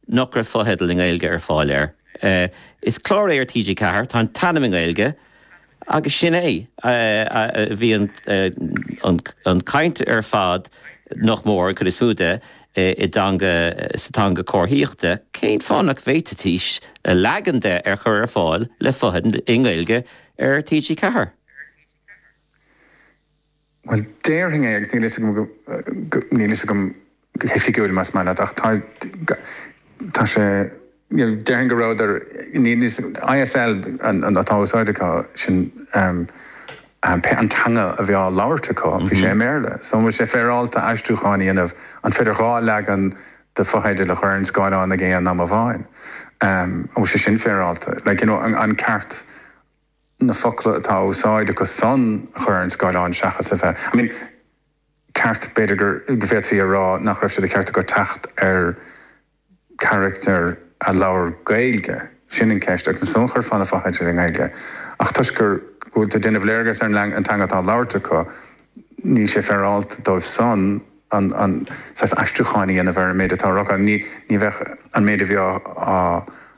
nach raibh fotheidil i nGaeilge ar fáil air. Is clár é ar TG4, tá an t-ainm i nGaeilge agus sin é. Bhí an chaint ar fad, nach mór, an chuid is mó de, i dteanga, sa teanga chomharthaíochta, cén fáth nach bhféadfaidís leagan de a chur ar fáil le fotheidil i nGaeilge ar TG4? Bhuel, déarfainn é, agus níl a fhios agam go, níl a fhios agam go hoifigiúil más maith leat, ach tá, tá sé, you know, déarfainn go rabhadar, níl a fhios, ISL atá á úsáid acu, sin pé an teanga a bhí á labhairt acu, bhí sé i mBéarla. So an bhfuil sé féaráilte aistriúchán a dhéanamh, an féidir dhá leagan de fotheidil a chur ar an scáileán ag aon am amháin? An bhfuil sé sin féaráilte? Like, you know, an ceart. na focla atá á úsáid acu san a chur ar an scáileán seachas a bheith, I mean, ceart, b'fhéidir gur, go bhféadfaí a rá nach raibh sé ceart acu teacht ar charachtar a labhair Gaeilge, sin an ceist, agus ansan chuirfeá na fotheidil i nGaeilge ach toisc gur, go bhfuil, tá tú ag déanamh léargas ar an teanga atá á labhairt acu, níl sé féaráilte dóibh san an, an, saghas aistriúcháin a dhéanamh ar an méid atá á rá acu, ní, ní bheadh an méid a bhí á, á.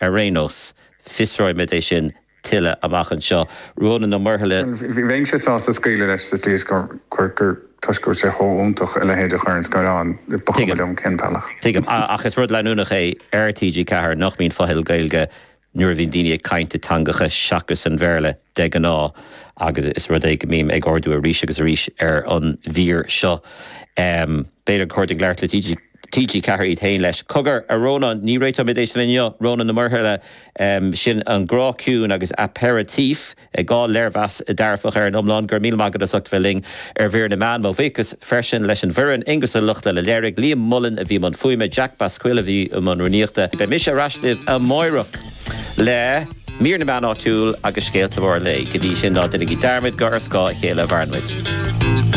Ar aon nós, fiosróimid é sin tuilleadh amach anseo. Rónán Ó Muirthile. Bheinnse sásta scaoileadh leis sa tslí is gur, gur, toisc go bhfuil sé chomh iontach a leithéid a chur ar an scáileán, ba chuma liom cén bealach. Tuigim. Ach is rud leanúnach é ar TG4 nach mbíonn fotheidil Gaeilge nuair a bhíonn daoine ag caint i dteangacha seachas an Bhéarla de ghnáth agus is rud é go mbím ag ardú arís agus arís ar an mhír seo. B'fhéidir gur cóir dúinn labhairt le TG4 iad féin leis. Cogar, a Rónáin, ní réiteoimid é sin inniu, Rónán Ó Muirthile, sin An Grá Ciúin agus Aperitif, dhá léirmheas dearfach ar an iomlán, go raibh míle maith agat as ucht a bheith linn ar Mhír na Meán. Mo bhuíochas freisin leis an bhfoireann, Aonghus Ó Lochlainn a léirigh, Liam Mullen a bhí i mbun fuaime, Jack Basquill a bhí i mbun rúnaíochta. Beidh mise ar ais libh amárach le Mír na Meán Áitiúil agus scéalta móra an lae. Go dtí sin, ná déanaigí dearmad gur ar scáth a chéile a mhaireann muid.